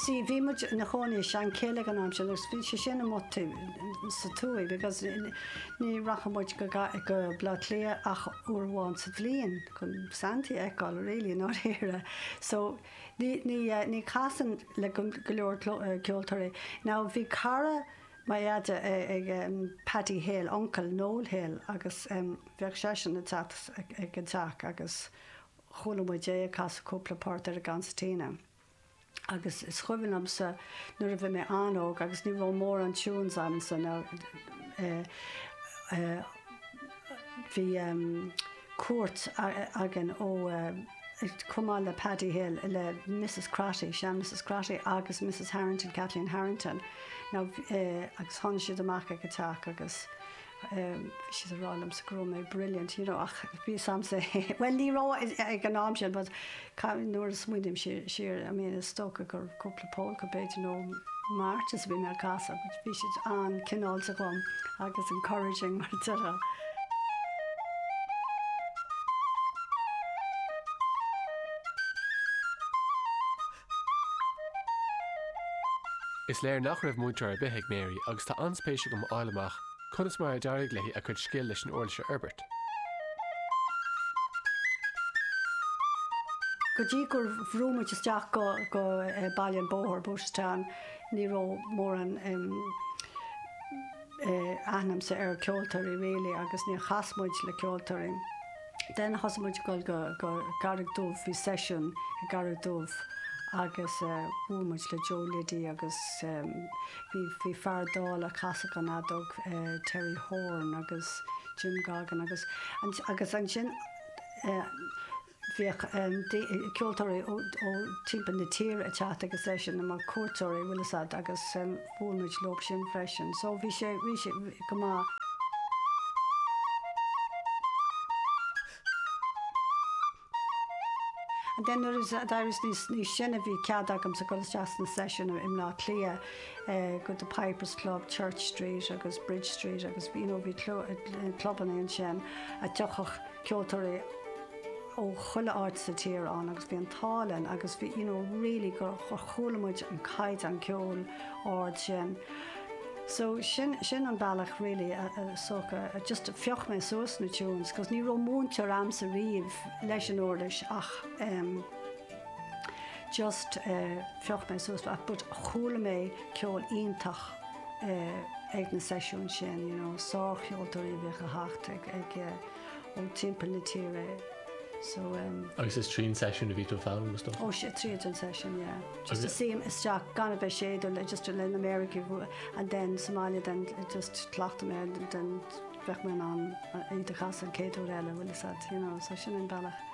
Sea, bhí muid ina chónaí i Seanchill ag an am sin agus bhí sé sin amuigh taobh sa tuath agus ní rachadh muid go Bleá Cliath ach uair amháin sa bhliain chun Santaí a fheiceáil really i ndáiríre. So ní chasfainn le go leor ceoltóirí. Now bhí cara mo dheaide eh Paddy Hill, uncail Noel Hill, agus bheadh seisean ag teacht ag an teach agus chuala muid é ag casadh cúpla port ar an gconsairtín agus is cuimhin liomsa nuair a bhí mé an-óg agus ní raibh mórán tunes a'msa eh eh bhí ehm cuairt againn ó eh chomh maith le Paddy Hill le Mrs Crotty, sean Mrs Crotty agus Mrs Harrington, Kathleen Harrington, now eh agus tháinig siad amach ag an teach agus. bhí siad ag rá liomsa go raibh mé brilliant, you know, ach bhí fhios a'msa, bhuel ní raibh ag an am sin but nuair a smaoiním siar, I mean is dócha gur cúpla pólca b'fhéidir nó marches a bhí mé ag casadh but bhí siad an-cineálta dhom agus encouraging mar a deirtear. Is léir nach raibh múinteoir ar bith ag Mary agus tá an-spéis agam a fháil amach conas mar a d'éirigh léi a cuid scil leis an uirlis a fhorbairt. Go dtí gur bhrúigh muid isteach go Baile an Bhóthair, Booterstown, ní raibh mórán aithne a'msa ar ceoltóirí really agus níor chas muid le ceoltóirí. Then thosaigh muid ag dul go, go Carraig Dubh, bhí session i gCarraig Dubh agus eh bhuail muid le Joe Liddy agus em bhí, bhí fear dall ag casadh an fheadóg eh Terry Horan agus Jim Goggin agus, agus ansin eh bhíodh em ceoltóirí ó, ó timpeall na tíre ag teacht ag an seisiún mar cuairteoirí, bhfuil fhios a'd agus em. Bhuail muid leosan freisin so bhí sé bhí sé go maith. And then nuair a d'éiríos níos níos sine bhí cead agamsa dul isteach sna seisiúin i mBleá Cliath eh go The Pipers Club, Church Street agus Bridge Street agus you know bhí clubanna ansin a dtiocfadh ceoltóirí ó chuile áit sa tír ann agus bhí an t-ádh linn agus bhí you know really gur chuala muid an caighdeán ceoil ard sin so sin sin an bealach really so just phioc mé suas na tunes cos ní raibh múinteoir a'msa riamh leis an uirlis ach em just phioc mé suas but chuala mé ceol iontach. ag na seisiúin sin, you know, sárcheoltóirí a bheadh ag teacht ag, ag, ó timpeall na tíre, so umm. Agus is tríd an seisiún a bhí tú ag foghlaim is dócha? Ó, sea, tríd an seisiún, yeah. Just shuínn isteach, gan a bheith ag séideadh, just le na méaracha, and then sa mbaile then just chleachtadh mé, then bheadh mé in ann iad a chasadh an céad uair eile, bhfuil 'fhios a'd, you know, so sin an bealach.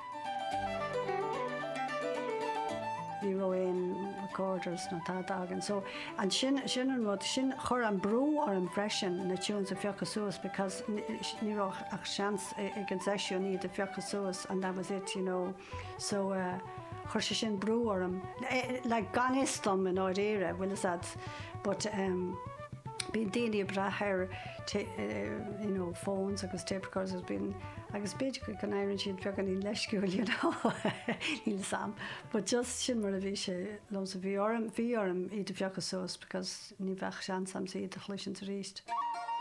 Ní raibh aon recorders nó tada againn so and sin an rud, sin chuir an brú orm freisin na tunes a phiocadh suas because ní raibh ach seans ag an seisiún iad a phiocadh suas and that was it you know so chuir sé sin brú orm like gan fhios dom i ndáiríre bhfuil 'fhios a'd but. Bíonn daoine ag brath ar you know phones agus tape recorders anois bíonn agus b'fhéidir go n-éiríonn siad beagáinín leisciúil you know níl 'fhios a'm but just sin mar a bhí sé liomsa. Bhí orm bhí orm iad a phiocadh suas because ní bheadh seans a'm iad a chloisint arís.